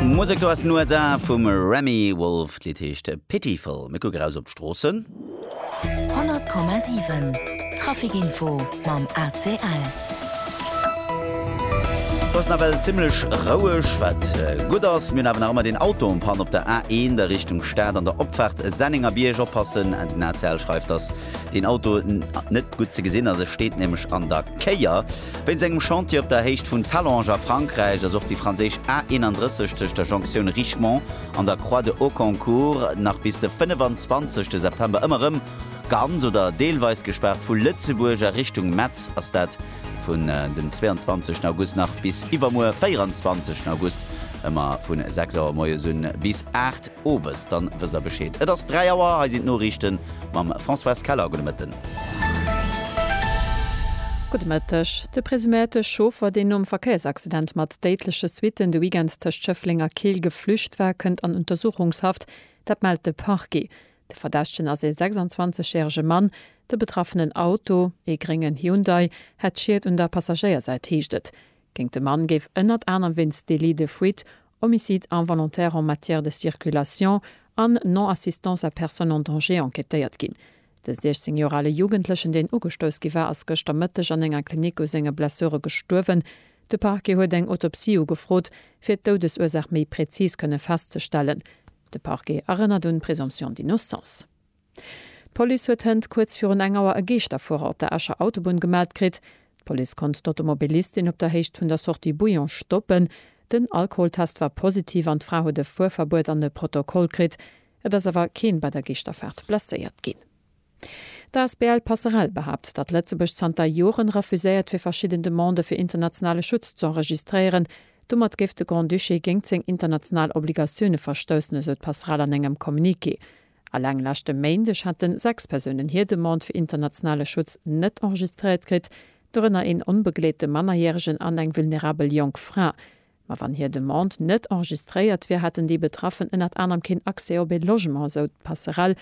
Musek do aus den USA vum Remi Wolf. D'Lidd heescht Pitiful. Mir kucken eraus op d'Stroossen. 100,7 Traficinfo mam ACL. Et ass nawell zimmlech roueg, wat gutt ass. Mir hunn awer nach ëmmer deen Auto en panne op der A1 a Richtung Stad an der Opfaart Sennengerbierg. Oppassen, den ACL schreift, dass deen Auto net gutt ze gesinn ass, e steet nämlech an der Kéier. Wéinst engem Chantier op der Héicht vun Talange a Frankräich ass och déi franséisch A 31 tëscht der Jonctioun Richemont an der Croix de Hauconcourt nach bis de 25 September ëmmer rëm ganz oder deelweis gespaart. Vu Lëtzebuerg a Richtung Metz ass dat vun dem 22 August nach bis iwwermuer 24 August ëmmer vu 6 Auer moies un bis 8 owes. Dann wësst der Bescheed. Et ass 3 Auer, hei sinn d'Noriichten mam Françoise Keller. Gudde Mëtten. Gudde Mëtteg. De presuméierte Chauffer, deen nom Verkéiersaccident mat déidleche Suitten de Weekend tëscht Schëffleng a Keel geflücht war, kënnt an Untersuchungshaft. Dat mellt de Parquet. De Verdächtegen ass ee 26 järege Mann. De betraffenen Auto, ee gréngen Hyundai, hätt Schied un der Passagéiersäit, heescht et. Géint de Mann géif ënnert anerem wéinst Délit de fuite, Homicide involontaire en matière de circulation an Non-assistance à personne en danger enquêtéiert ginn. De 16 Joer ale Jugendlechen, deen ugestouss gi war, ass gëschter Mëtteg an enger Klinik u senge Blessure gestuerwen. De Parquet huet eng Autopsie ugefrot, fir d'Doudesursaach méi präzis kënne festzestellen. De Parquet erënnert un d'Présomption d'innocence. D'Police huet hënt kuerz virun eng Auer e Geeschterfuerer op der Escher Autobunn gemellt kritt. D'Police konnt d'Automobilistin op der Héicht vun der Sortie Bouillon stoppen. Den Alkoholtest war positiv an d'Fra huet e Fuerverbuet an e Protokoll kritt. Et ass awer keen bei der Geeschterfaart blesséiert ginn. D'asbl Passerell behaapt, datt Lëtzebuerg zanter Joren refuséiert fir verschidden Demandë fir internationale Schutz z'enregistréieren. Domat géif de Grand-Duché géingt seng international Obligatioune verstoussen, esou d'Passerell an engem Communiqué. Eleng leschte Méindeg hate sechs Persounen hir Demande fir internationale Schutz net enregistréiert kritt, dorënner een onbegleete Mannerjäregen an eng vulnerabel jonk Fra. Ma wann hir Demande net enregistréiert wier, hätten déi Betraffen ënnert anerem keen Accès op ee Logement, esou d'Passerell.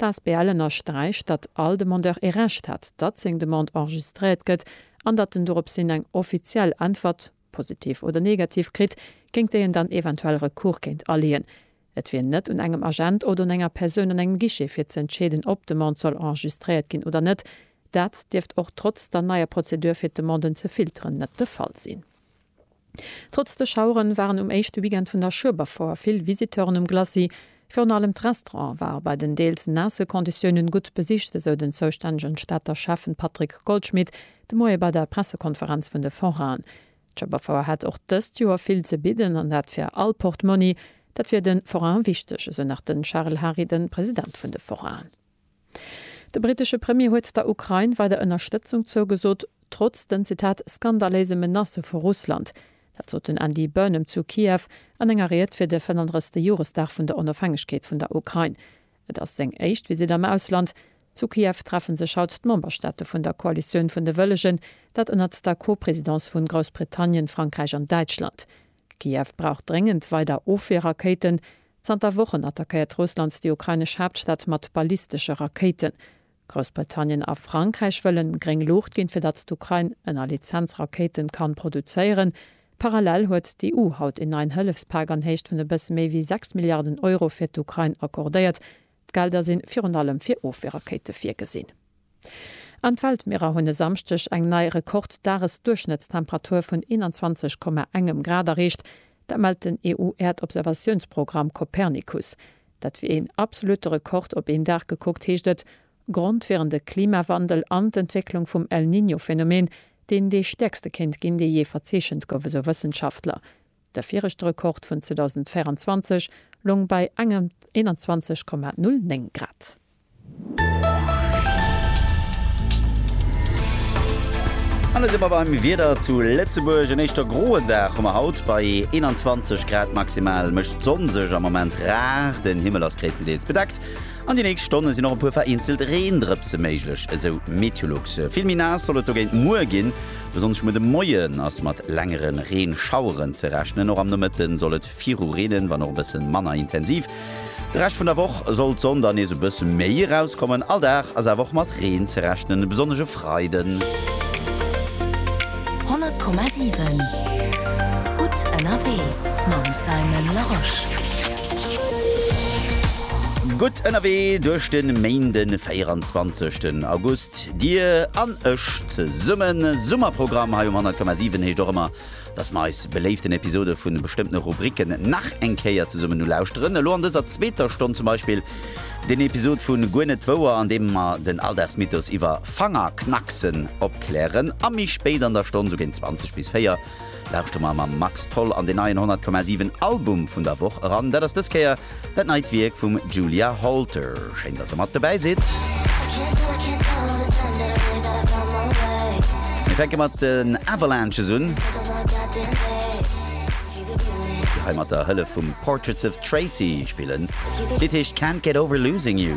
D'asbl ënnersträicht, datt all Demandeur ee Recht hätt, datt seng Demande enregistréiert gëtt an datt en dorops hin eng offiziell Äntwert, positiv oder negativ, kritt, géint déi en dann eventuell Recours kéint aleeën. Et wier net un engem Agent oder un enger Persoun an engem Guichet fir ze entscheeden, ob d'Demande soll enregistréiert ginn oder net. Dat dierft och trotz der neier Prozedur fir d'Demanden ze filteren net de Fall sinn. Trotz de Schauere waren um éischte Weekend vun der Schueberfouer vill Visiteuren um Glacis. Virun allem d'Restaurante ware bei den deels naasse Konditiounen gutt besicht, esou den zoustännegen Stater Schäffen Patrick Goldschmidt de Moie bei der Pressekonferenz vun de Forainen. D'Schëpperfouer hätt och dëst Joer vill ze bidden an dat fir all Portmonni. Dat wier de Forainen wichteg, esou nach de Charel Hary, de President vun de Forainen. De brittesche Premier huet der Ukrain weider Ënnerstëtzung zougesot, trotz den, Zitat, skandaléise Menacë vu Russland. Dat sot den Andy Burnham zu Kiew an enger Ried fir de 35. Joresdag vun der Onofhängegkeet vun der Ukrain. Et ass seng éischt Visitt am Ausland. Zu Kiew treffe sech haut d'Memberstaate vun der Koalitioun vun de Wëllegen, dat ënnert der Co-Presidence vun Groussbritannien, Frankräich an Däitschland. Kiew brauch dréngend weider Ofwierrakéiten. Zanter Wochen attackéiert Russland déi ukrainesch Haaptstad mat ballistesche Rakéiten. Groussbritannien a Frankräich wëllen gréng Luucht ginn, fir datt d'Ukrain ënner Lizenz Rakéiten kann produzéieren. Parallel huet d'EU haut een neien Hëllefspak an Héicht vun e bësse méi wéi 6 Milliarden Euro fir d'Ukrain accordéiert. D'Gelder sinn virun allem fir Ofweerrakéiten virgesinn. An d'Weltmierer hunn e Samschdeg eng nei Rekord-Dages-Duerchschnëttstemperatur vun 21,1 Grad erreecht. Dat mellt den EU-Äerdobservatiounsprogramm Copernicus. Dat wier een absolutte Rekord op een Dag gekuckt, heescht et. Grond wieren de Klimawandel an d'Entwécklung vum El Niño-Phenomen, deen dee stäerkste kéint ginn, dee jee verzeechent gouf, esou Wëssenschaftler. De viregte Rekord vun 2024 loung bei engem 21,09 Grad. An da si mer beim Wieder zu Lëtzebuerg. En éischter groen Dag hu mer haut. Bei 21 Grad maximal mécht d'Sonn sech am Moment rar. Den Himmel ass gréisstendeels bedeckt an déi nächst Stonne sinn och e puer vereenzelt Reendrëpse méiglech, esou Meteolux. Vill méi naass soll et dogéint muer ginn. Besonnesch muer de Moien ass mat längere Reenschaueren ze rechnen. Och am Nomëtte soll et. Viru Reenen, wann och e bëssen manner intensiv. De Rescht vun der Woch soll d'Sonn dann nees e bëssen méi erauskommen. All Dag ass awer och mat Reen ze rechnen, besonnesch e Freiden. 100,7 gutt ënnerwee mam Simon Larosche. Gutt ënnerwee duerch de Méinde 24 August. Dir an ech zesummen. Summerprogramm hei um 100,7 heescht och ëmmer Dass mer eis beléiften Episode vun bestëmmtene Rubriken nach eng Kéier zesummen ulauschteren. Elo an dëser zweeter Stonn zum Beispill den Episod vu Guer net wouer, an deem mer den Alldagsmythos iwwer Fangerknacksen opklären. A méi spéit an der Stonn, sou géint 20 bis 4, lauschtere mer mam Max Tholl an den neien 100,7 Album vun der Woch eran. Dat ass dës Kéier Dat neit Wierk vum Julia Holter. Schéin dass der mat dobäi sidd. Mir fänke mat den Avalanches un, déi hei mat der Hëllef vum Portraits of Tracy spillen. D'Lidd heescht Can't Get Over Losing You.